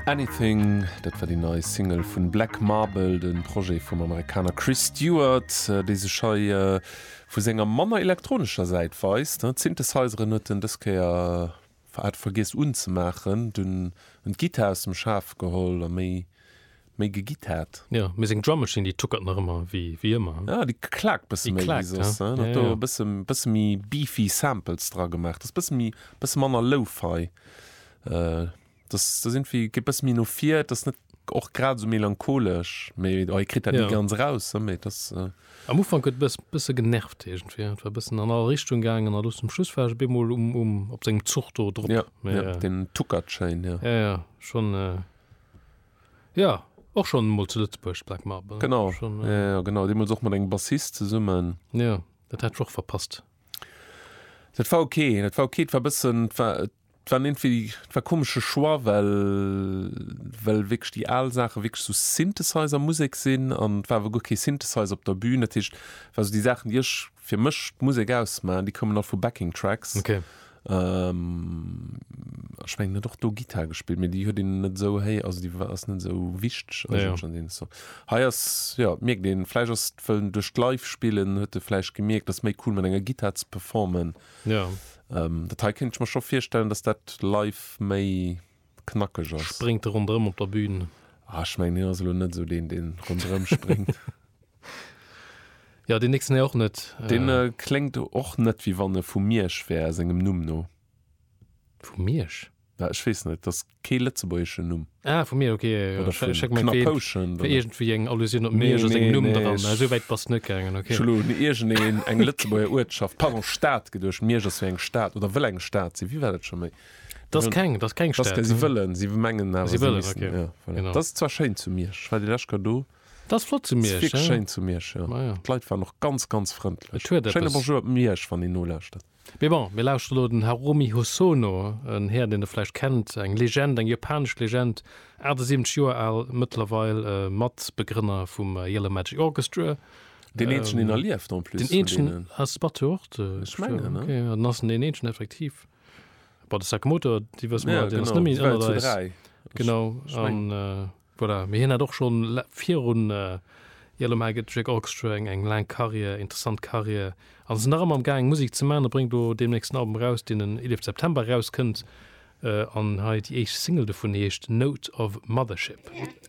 Anything, dat war déi nei Single vun Black Marble, de Projet vum Amerikaner Chris Stewart, dee sech hei vu senger manner elektronescher Säit weist. D'Synthesizeren huet en dës Kéier hat vergiess unzemaachen, dunn en d'Gittar aus dem Schaf geholl a méi méi gegitt hat. Jo, mee seng Drum Machine, déi tuckert nach ëmmer wéi wéi ëmmer. Ja, déi klaakt e bësse Déi méi wéi klaakt, soss. ja. En hat Ja, do ja. e bësse bësse méi beefy Samples dra gemaach. Dat ass e bësse méi bësse manner Lo-Fi. Äh, dass dass irgendwie geet e bësse méi no vir. Et ass net och grad esou melancholesch, mee oh, hie kritt dat ni Ja. ganz raus, ë, mee et ass. Äh, Am Ufank huet bëss bësse genervt iergendwéi. Et war bëssen an all Richtung gaangen a lo zum Schluss war ech op eemol um um op sengem Zuch do drop. ja, Mee, ja, äh, deen tuckert schéin, ja. ja, ja, schon, äh, Ja, och schonn emol zu Lëtzebuerg, d'Black Marble. Genau, schon, äh... ja, genau, deemools och mat engem Bassist zesummen. Ja, dat hat ech och verpasst. Dat war ok, dat war ok, dat war bëssen, dat war, dat war iergendwéi, dat war e komesche Choix, well, well wierklech déi al Saache wierklech sou Synthesizer-Musek sinn an et war awer guer kee Synthesizer op der Bühn. Dat heescht, et war sou déi Saachen, déi ech fir mech d'Musek ausmachen, déi kommen all vu Backing Tracks. Okay. Ähm, ech mengen, en huet och do Gittar gespillt, mee déi huet een net esou héi, also déi war, ass net esou wichteg Ja, ja. eigentlech an deene Songs. Hei ass, jo, mierkt een, vläicht ass et, wëll en duerch d'Live-Spillen huet e vläicht gemierkt, ass méi cool mat enger Gittar ze performen. Ja. Ähm, dat hei kéint ech mer scho virstellen, datt dat live méi knackeg ass. Spréngt de ronderëm op der Bühn? Ah, ech mengen, hien ass elo net esou deen, dee ronderëm spréngt. Jo, deen nächsten hei och net. Deen kléngt och net, wéi wann e vu Miersch wär, sengem Numm no. Vu Miersch? Ja, ech weess net, dat ass kee lëtzebuergeschen Numm. Ah, vu Miersch, ok. Oder vun Knappouschent. Fir iergendwéi eng Allusioun op Miersch a sengem Numm dran. Mä esou wäit bass de net gaangen, ok. Ech hu elo un iergendeng eng Lëtzebuerger Uertschaft, pardon, Stad geduecht. Miersch ass jo eng Stad, oder wëll eng Stad sinn. Wéi war dat scho méi? Das keng, das keng Stad. Si wëllen, si mengen awer, si wëllen, ja, voilà. Dat ass zwar schéin zu Miersch, ech war déi lescht Kéier do. Dat ass flott zu Miersch. Dat ass wierklech schéin zu Miersch, jo. Ah, ja. D'Leit waren och ganz, ganz frëndlech. Schéine Bonjour op Miersch, wann een nolauschtert. Mee bon, mir lauschteren elo den Harumi Hosono, en Här, deen Der vläicht kennt, eng Legend, eng japanesch Legend, 78 Joer al mëttlerweil, Matbegrënner vum Yellow Magic Orchestra. Deen Eenzegen, deen erlieft en plus. Deen Eenzegen ass Batteur och de. Ech mengen, ne? Okay, dann ass en deen Eenzegen effektiv. Bei de Sakamoto, déi wësse mer, deen ass nëmme ënnert eis. Genau, an voilà, mee hien hat och schonn virun Yellow Mike et Jake Orchestra eng eng laang Karriär, interessant Karriär, an ass nach ëmmer am gaangen Musek ze maachen. E bréngt elo deemnächst en Album eraus, deen en 11 September erauskënnt, an hei déi éischt Single dovun heescht Note of Mothership.